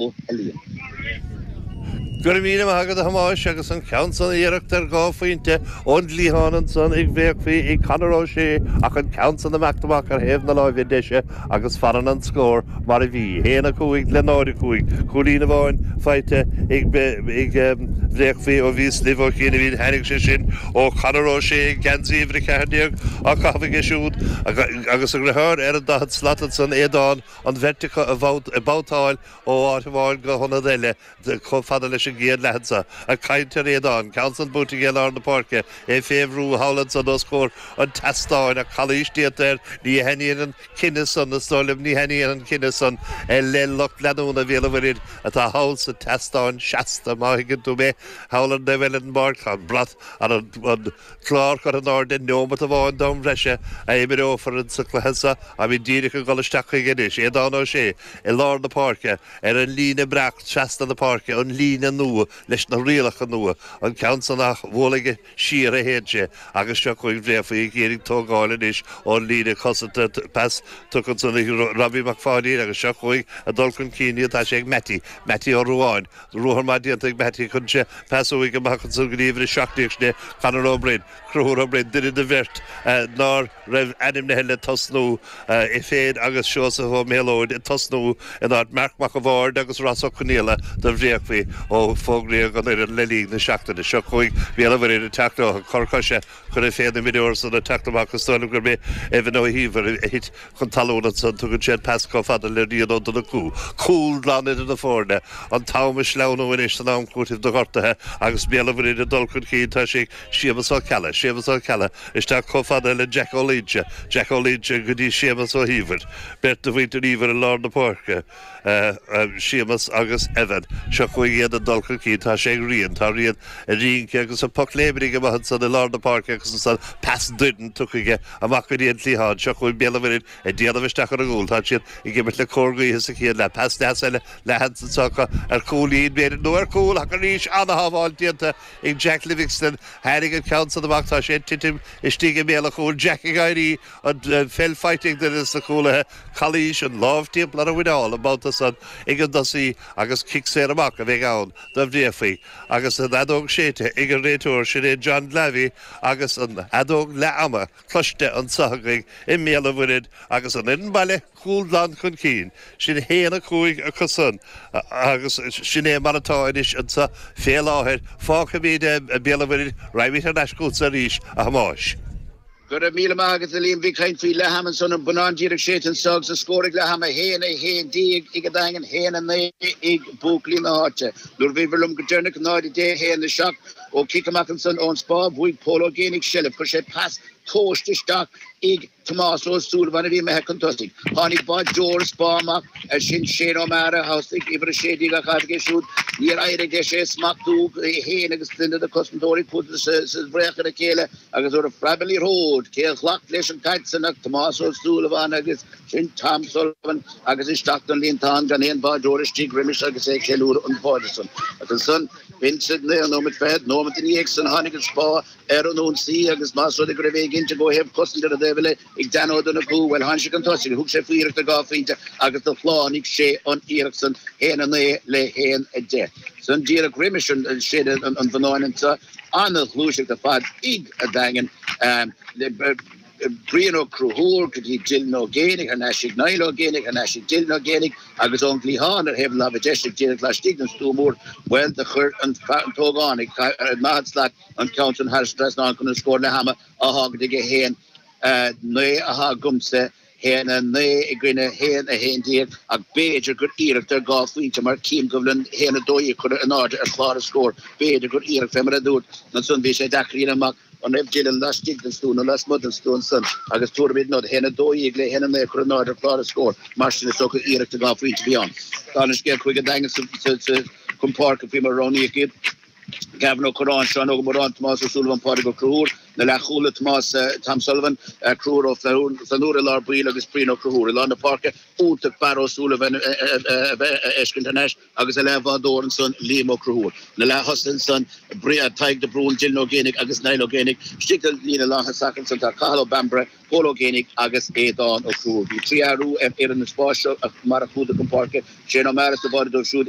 Ó hEilíon. Go raibh míle maith agat a Thomáis agus an ceann san iarracht ar dhá phointe ón gcliathán ansan ag Bréachmhaí ag Conor Ó Sé ach an ceann san ag imeacht amach ar thaobh na láimhe deise agus fanann an scór mar a bhí, haon a cúig le náid a cúig, cúilín amháin faighte ag Bréachmhaí ó bhíos libh ó chianaibh tháinig sé sin ó Conor Ó Sé ag geansaí uimhir a ceathair déag á chaitheamh aige siúd agus a dheartháir ar an daichead slat ansan Aodán an bheirt acu ag babhtáil ó áit amháin go hionad eile chomh fada leis an gcéad leath anso, ag caint ar Aodán, ceann san buaite aige i lár na páirce, é fé bhrú thall ansan os comhair an tseastáin, ach calaois déanta air, ní thaitníonn an cinneadh san, is dóigh liom, ní thaitníonn an cinneadh san le lucht leanúna Bhéal an Mhuirthid atá thall sa tseastán seasta, má thuigeann tú mé, thall ar a bhfuil an marc, an brat an. Clár curtha in airde, neomat amháin d'am breise a imreofar in sa cluiche seo táimid díreach ag dul isteach chuige anois, Aodán Ó Sé i lár na páirce, ar an líne breac trasna na páirce, an líne nua leis na rialacha nua, an ceann san ach bhuail aige siar a théann sé agus seo chugainn Bréachmhaí ag iarraidh tógáil anois ón líne cosanta, pas tugtha ansan ag Robbie Mac Pháidín agus seo chugainn ag dul chun cinn iad, tá sé ag Mattie, Mattie Ó Ruáin. Ruathar maith déanta ag Mattie tugann sé pas uaidh amach ansan go dtí uimhir a seacht déag sin é Conor Ó Broin, Conchúr Ó Broin, duine de bheirt nár raibh ainmnithe le tosnú, é féin agus Seosamh Ó Méalóid ag tosnú in áit Marc Mac a' Bhaird agus Ross Ó Conaola do Bhréachmhaí ó fógraíodh an fhoireann le linn na seachtaine. Seo chugainn Béal an Mhuirthid ag teacht leo ag cor coise, Curtha fén imreoir san ag teacht amach is dóigh liom gurb é Evan Ó hÍomhair a thit chun talún ansan, tugann sé an pas chomh fada le Rian Ó Donnchú, cúl glan idir na foirne, an t-am ag sleamhnú anois san am cúitimh do ghortaithe agus Béal an Mhuirthid ag dul chun cinn tá sé ag Séamus Ó Ceallaigh, Séamus Ó Ceallaigh isteach chomh fada le Jack Ó Loingsigh, Jack Ó Loingsigh go dtí Séamus Ó hÍomhair, beirt de mhuintir Íomhair i lár na páirce. Séamus agus Evan. Seo chugainn iad ag dul chun cinn. Tá sé ag Rian. Tá Rian ag rince agus ag pocléimrigh ag imeacht ansan i lár na páirce agus ansan pas doirn tugtha aige amach go dtí an cliathán. Seo chugainn Béal an Mhuirthid ag déanamh isteach ar an gcúl. Tá siad ag imirt le cóir gaoithe sa chéad leath. Pas deas eile ansan seans ar chúilín b'fhéidir nó ar chúl ach arís ana-shábháil déanta ag Jack Livingston. Tháinig an ceann san amach. Tá sé ag titim istigh i mbéal an chúil. Jack ag éirí. an pheil faighte ag duine de na cúlaithe, Calaois, an lámh timpeall ar a mhuineál an babhta san ag an dtosaí agus cic saor amach a bheidh ann do Bhréachmhaí agus an fheadóg séidte ag an réiteoir, sin é John Glavey agus an fheadóg leath-ama cloiste anso againn i mBéal an Mhuirthid agus an fhoireann baile cúl glan chun cinn, sin haon a cúig acu san agus sin é mar atá anois anso fé láthair. Fágfaimíd Béal an Mhuirthid, raghaimid thar n-ais chútsa arís, a Thomáis. Go raibh míle maith agat a Liam. Bhí caint faoi leath-am ansan, an bonnán díreach séidte anso agus an scór ag leath-am, 1, 11, ag an Daingean, 1, 9, ag buachaillí na háite. Nuair a bhíobhair liom go deireanach, 0, 10, 1, 7, ó chic amach ansan ón spá, bhuaigh Pól Ó Géibheannaigh seilbh, chuir sé pas tomhaiste isteach ag Tomás Ó Súilleabháin a bhí imithe chun tosaigh. Tháinig báideoir an Spá amach, ar sin Shane O'Mara geansaí uimhir 16 á chaitheamh aige siúd, níor éirigh leis é a smachtú, é féin agus duine de chosantóirí Phuds sa bhfraoch ar a chéile, agus nuair a phreab an liathróid, cé a ghlac leis an gcaid san ach Tomás Ó Súilleabháin agus sin Tom Sullivan agus isteach don líontán gan aon bháideoir istigh roimis agus é ag ceiliúradh an bháide san. Agus ansan, b'in sa naoú nóiméad fichead, nóiméad ina dhiaidh san tháinig an spá ar an ionsaí agus más rud é go raibh éiginnteacht ó thaobh cosaint ar an taobh eile, Ag Dan Ó Donnchú, bhuel tháinig sé chun tosaigh, thug sé faoi iarracht ar dhá phointe agus do shlánaigh sé an iarracht san haon a naoi le haon a deich. San díreach roimis séideadh an bhonnáin ansan an-ghluaiseacht ar fad ag an Daingean le Brian Ó Conchúir go dtí Dylan Ó Géibheannaigh thar n-ais ag Niall Ó Géibheannaigh thar n-ais ag Dylan Ó Géibheannaigh agus ón gcliathán ar thaobh láimhe deise díreach laistigh den stua mór bhuel do chuir an t-ógánach 40 slat an ceann san thar an trasnán chun an scór leath-ama a fhágaint ag a haon a naoi atá agamsa, haon a naoi i gcoinne haon 11 ach b'fhéidir gur iarracht ar dhá phointe mar chím go bhfuil haon 12 a cuireadh in airde ar chlár an scóir. B'fhéidir gur iarracht fé mar a dúirt, ansan bhí sé deacair a dhéanamh amach an raibh Dylan laistigh den stua nó lasmuigh den stua ansan agus tuairim iad nod, haon 12 le haon 9 a cuireadh in airde ar chlár an scóir. Mar sin is dócha iarracht ar dhá phointe a bhí ann. Ar aon scéal chuaigh an Daingean chun páirce faoi mar a roghnaíodh iad, Gavin Ó Curráin, Seán Óg Ó Móráin, Tomás Ó Súilleabháin, Pádraig Ó Conchúir. Na leathchúlaithe Tomás Tom Sullivan, Conchúr Ó Flannúra i lár baill agus Brian Ó Conchúir i lár na páirce iontach Barra Ó Súilleabháin a bheith a fheiscint thar n-ais agus a leathbhádóir ansan Liam Ó Conchúir. Na leath-thosaithe ansan Tadhg de Brún, Dylan Ó Géibheannaigh agus Niall Ó Géibheannaigh. Istigh sa líne lántosach ansan tá Cathal Ó Bambaire, Pól Ó Géibheannaigh agus Aodán Ó Conchúir. Bhí trí athrú ar fhoireann an Spá fé mar a chuadar chun páirce, Shane O'Mara sa bháide dóibh siúd,